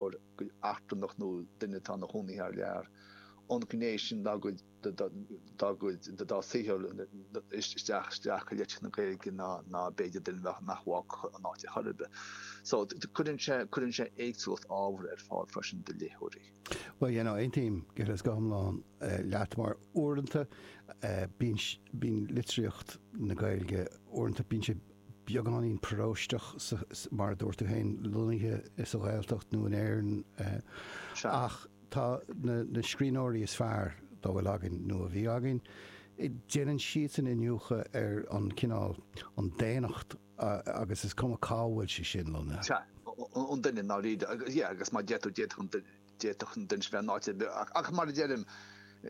eachtrannach nó duine atá ina chónaí thar lear, an ghné sin dá gcuid, dá gcuid, dá saothar isteach, isteach i litríocht na Gaeilge ná, ná b'fhéidir duine a bheadh, nach bhfágfadh an áit ar chor ar bith. So, cuireann sé, cuireann sé éagsúlacht ábhair ar fáil freisin do léitheoirí. Bhuel, you know, aontaím, gan dabht, go hiomlán leat mar uaireanta bíonn, bíonn litríocht na Gaeilge, uaireanta bíonn sé beagáinín paróisteach, mar a dúirt tú féin, lonnaithe sa Ghaeltacht nó in Éirinn, ach tá na scríbhneoirí is fearr dá bhfuil againn, nó a bhí againn, déanann siadsan iniúchadh ar an chineál, an daonnacht agus is cuma cá bhfuil sé sin lonnaithe. Sea, an duine, nádúr, yeah, agus mar a deir tú, d'fhéadfadh an duine. D'fhéadfadh an duine sin bheith in áit ar bith, ach mar a deirim,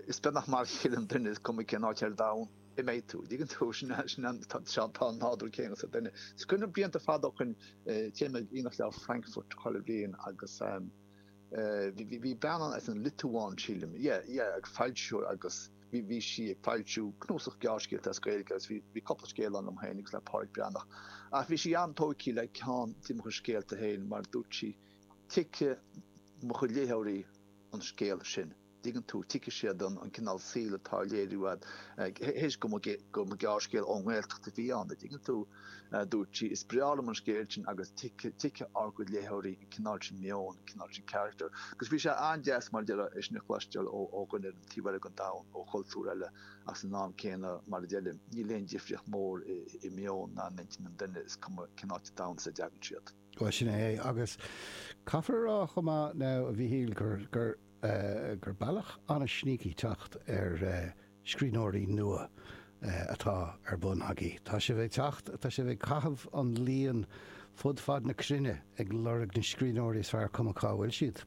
is beagnach mar a chéile an duine, is cuma cén áit ar domhan a mbeidh tú. An dtuigeann tú? Sin é, tá an nádúr céanna sa duine. Is cuimhin liom blianta fada ó shin, téim ag aonach leabhar Frankfurt chuile bhliain agus bhí bean ann as an Liotuáin, sílim, yeah, yeah, foilsitheoir agus bhí sí ag foilsiú cnuasach gearrscéalta as Gaeilge agus bhí cúpla scéal ann liom féin agus le Pádraig Breathnach ach bhí sí an-tógtha le ceann de mo chuid scéalta féin mar dúirt sí, Tuigfidh mo chuid léitheoirí an scéal sin, dtuigeann tú, tuigfidh siad an cineál saoil atá á léiriú agat, théis go mba gearrscéal ón nGaeltacht a bhí ann, dtuigeann tú, a dúirt sí. Is breá liom an scéal sin agus tuigfidh ár gcuid léitheoirí an cineál sin meoin, an cineál sin carachtair. Agus bhí sé an-deas, mar a deir tú, é sin a chloisteáil ó dhuine ar an taobh eile den domhan, ó chultúr eile, ach san am céanna, mar a deir Liam, níl aon difríocht mhór i meon ná in intinn an duine, is cuma cén áit sa domhan as a dtagann siad. Bhuel, sin é é. Agus caithfear a rá chomh maith now, a Mhíchíl, gur, gur, gur bealach an-sneaky teacht ar scríbhneoirí nua atá ar bun agaibh. Tá sibh ag teacht, tá sibh ag caitheamh an líon fud fad na cruinne ag lorg na scríbhneoirí is fearr, cuma cá bhfuil siad.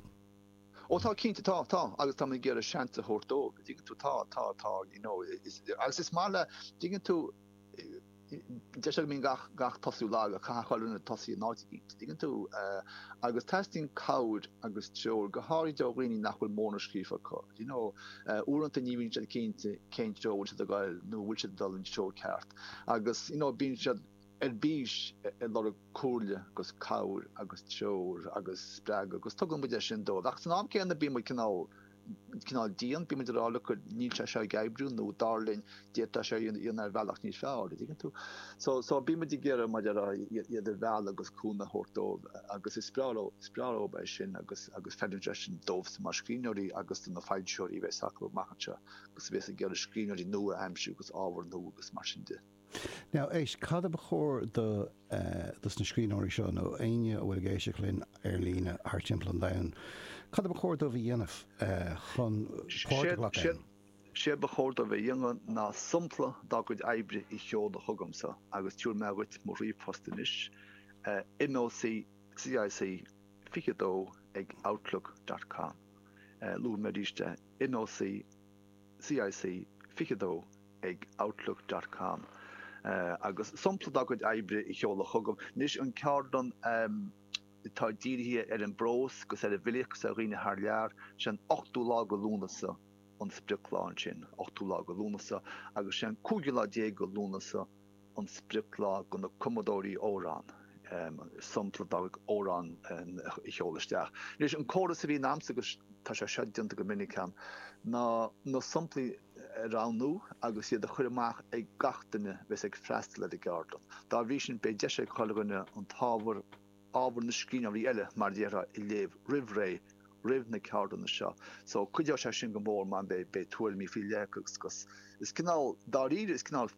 Ó tá, cinnte tá, tá. Agus táimid ag iarraidh seans a thabhairt dóibh, a dtuigeann tú. Tá, tá, tá, you know. Is, agus is maith le, tuigeann tú, deir siad go mbíonn gach tosú lag ach caithfidh chuile dhuine tosaí in áit éicint, dtuigeann tú, agus teastaíonn cabhair agus treoir, go háirithe ó dhaoine nach bhfuil mórán scríofa acu. Do you know, uaireanta ní bhíonn siad cinnte cén treo a bhfuil siad ag gabhail nó a bhfuil siad ag dul an treo ceart agus, you know, bíonn siad ar bís ag lorg comhairle agus cabhair agus treoir agus spreagadh agus tugann muid é sin dóibh. Ach san am céanna bíonn muid cineál. cineál dian, bímid ag rá look níl sé seo ag oibriú nó dar linn d'fhéadfá é seo a dhéanamh ar bhealach níos fearr, a dtuigeann tú? So, so bímid ag iarraidh idir iad a mhealladh agus cúnamh a thabhairt dóibh agus is breá leo, is breá leo é sin agus, agus feileann sé sin dóibhsan mar scríbhneoirí agus do na foilsitheoirí a bheas acu amach anseo agus a bheas ag iarraidh scríbhneoirí nua a aimsiú agus ábhar nua agus mar sin de. Now, éist, cad a ba chóir do, eh, dos na scríbhneoirí seo, nó éinne a bhfuil ag éisteacht linn ar líne thart timpeall an domhain, cad a ba chóir dóibh a dhéanamh, eh, chun páirt a ghlacadh ann? Séard, séard, séard ba chóir dóibh a dhéanamh ná sampla dá gcuid oibre a sheoladh chugamsa agus tabharfaidh mé dhuit mo ríomhphost anois, eh, MÓC, CIC 22 ag outlook dot com. Eh, luafaidh mé arís é, MÓC. CIC 22 ag outlook dot com agus sampla dá gcuid oibre a sheoladh chugam. Anois an ceardlann atá dírithe ar an bprós 'gus ar an bhfilíocht 'gus ar dhaoine thar lear, sé an 8ú lá de Lúnasa an sprioclá ansin, 8ú lá de Lúnasa agus sé an 15ú lá de Lúnasa, an sprioclá do na cumadóirí amhrán, sampla dá gcuid amhrán a sheoladh isteach. Anois, an córas a bhíonn agamsa, agus tá sé seo déanta go minic agam, ná na samplaí a roghnú agus iad a chur amach ag gach duine a bheas ag freastal ar an gceardlann. Dá bhrí sin, beidh deis ag chuile dhuine an t-ábhar, ábhar na scríbhneoirí eile, mar a déarfá, a léamh roimh ré, roimh na ceardlanna seo. So, cuideoidh sé sin go mór mar beidh tuairimí faoi leith acu agus is cineál, dáiríre, is cineál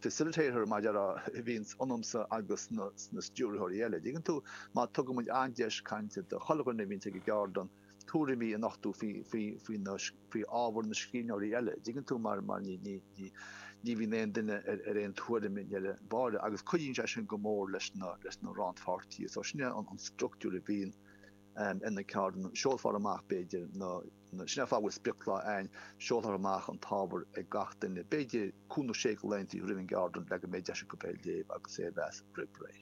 facilitator, mar a déarfá, a bhíonns ionamsa agus sna stiúrthóirí eile, an dtuigeann tú, mar tugann muid an deis cainte do chuile dhuine a bhíonns ag an gceardlann. tuairimí a nochtadh faoi ábhar na scríbhneoirí eile, an dtuigeann tú, mar ní bhíonn aon duine ar aon tuairim i ndeireadh báire, agus cuidíonn sé sin go mór leis na rannpháirtithe. So sin é an structúr a bhíonn ar na ceardlanna. Seolfar amach, b'fhéidir, na, sin é an fáth go bhfuil sprioclá ann, seolfar amach an t-ábhar ag gach duine, b'fhéidir, cúig nó sé de laethanta roimh an gceardlann le go mbeidh deis acu é a léamh agus é a mheas roimh ré.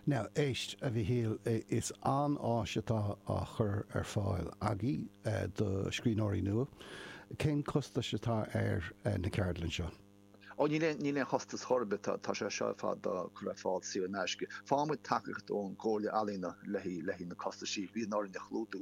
Now, éist, a Mhíchíl, is an-áis atá á chur ar fáil agaibh do scríbhneoirí nua. Cén costas atá ar na ceardlainn seo? Ó, níl aon chostas chor ar bith, tá sé seo ar fad á chur ar fáil saor in aisce. Faigheann muid tacaíocht ón gComhairle Ealaíona le haghaidh na costaisí a bhíonn orainn a chlúdach.